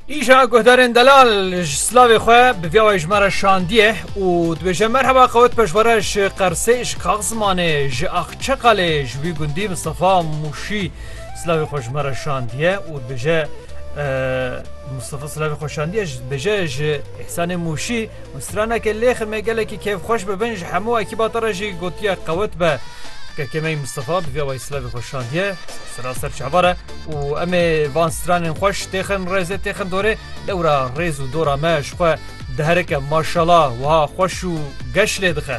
Îja guhdarên delal ji slavê xwe bi vya wê ji me re şandiye û dibêje merheba qewet pejwere ji Qersê ji Kax zimanê ji Axçeqalê ji wî gundî Mistefa Mûşî slavê xwe ji me re şandiye û dibêje Mustafa Slavê Xoşandiye dibêje ji Îhsanê Mûşî Û straneke lêxê me gelekî kêfxweş bi bin ji hemû ekîba te re jî gotiye qewet be. Kekê me yî Mistefa bi vîya wayî silavê xwe şandiye sira ser çava re û em ê van stranên xweş têxin rêzê têxin dorê lewra rêz û dora me ji xwe diherike maşala wiha xweş û geş lê dixe.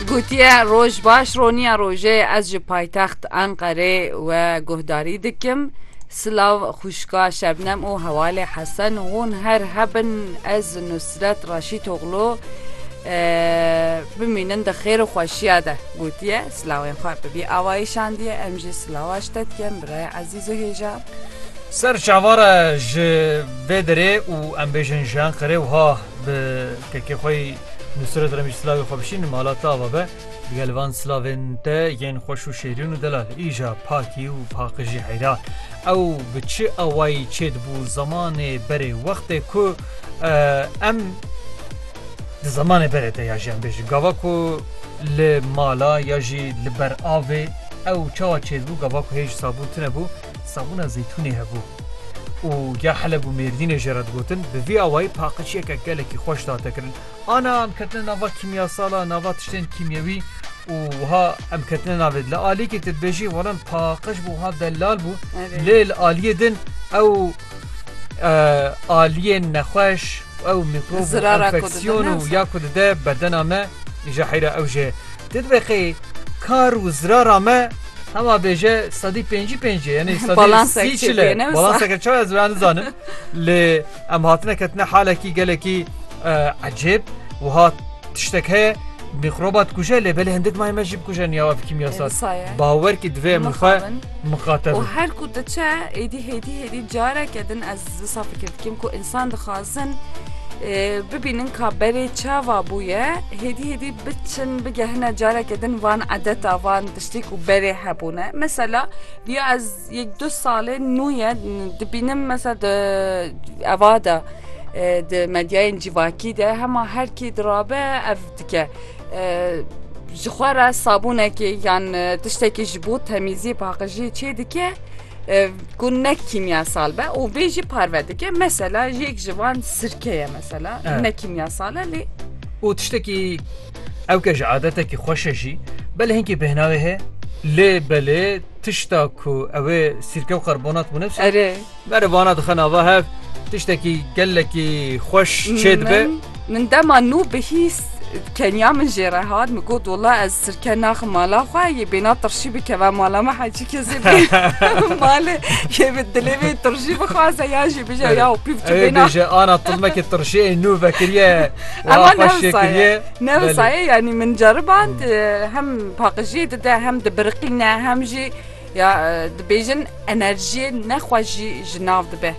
Gotiye roj baş roniya rojê ez ji paytext Enqerê we guhdarî dikim. Silav xuşka Şebnem û hewalê Hesen hûn her hebin ez Nusret Raşîtoğlu e, bimînin di xêr û xweşiya de gotiye silawên xwe bibî avayî şandiye em jî silawa ştet kem birayê ezîz Zihêja. Ser çavara ji vê derê û em bêjin ji Enqerê wiha bi kekê xwe yî Nusret Remîj silavê xwe bişîn mala te ava be digel li van silavên te yên xweş û şêrîn û delal îja pakî û paqijî heyra ew bi çi awayî çê dibû zemanê berê wextê ku em di zemanê berê te ya jî em bêjin gava ku li mala ya jî li ber avê Ew çawa çêdibû gava ku hê ji sabûn tune bû, sabûna zeytûnê hebû. Û ya Heleb û Mêrdînê jê re digotin, bi vî awayî paqijiyeke gelekî xweş date kirin. Ana em ketine nava kîmyasalan, nava tiştên kîmyewî û wiha em ketine navê din. Li aliyekê tu dibêjî wala min paqij bû wiha delal bû. Lê li aliyê din ew aliyên nexweş, ew mîkrob û enfeksyon û ya ku dide bedena me, îja heyra ew jê Di deqê kar û zirara me hema bêje sedî pêncî pêncê yenê sî çile balanseke çawa ez ben nizanim lê em hatine ketine halekî gelekî ecêb wiha tiştek heye mîxroba dikuje lê belê hindik may me jî bikuje niyawa fikî yasa bawer kî divê min xwe mixatem her ku diçe êdî hêdî hêdî careke din ez Disa fikir dikim ku insan dixwazin bibînin ka berê çava bûye hêdî hêdî biçin bigehine careke din van edeta van tiştê ku berê hebûne mesela diya ez yek du salê nû ye dibînim mesela di eva de di medyayên cîvakî de hema herkî dirabe ev dike ji xwe re sabûnekê yan tiştekî ji bo temîziyê paqijiyê çê dike Ku ne kîmyasal be û vê jî parve dike mesela yek ji wan sirke ye mesela ne kîmyasal e lê û tiştekî ew ke ji adetekî xweş e jî belê hinkî bêhnavê heye lê belê tişta ku ew ê sirke û karbonat bûne erê vana dixe nava hev tiştekî gelekî xweş çê dibe. Min dema nû bihîst keniya min jê re hat min got wala ez sirke naxim mala xwe yê bêna tirşî bikeve mala me hecî kesê malê yê bi dilê vê tirşî bixwaze ya jî bije ya pîv tu bêna bije ana tilmekê tirşiyê nû vekiriye ema nevsaye nevsaye yanî min ceriband hem paqijiyê dide hem dibiriqîne hem jî ya dibêjin enerjiyê nexwe jî ji nav dibe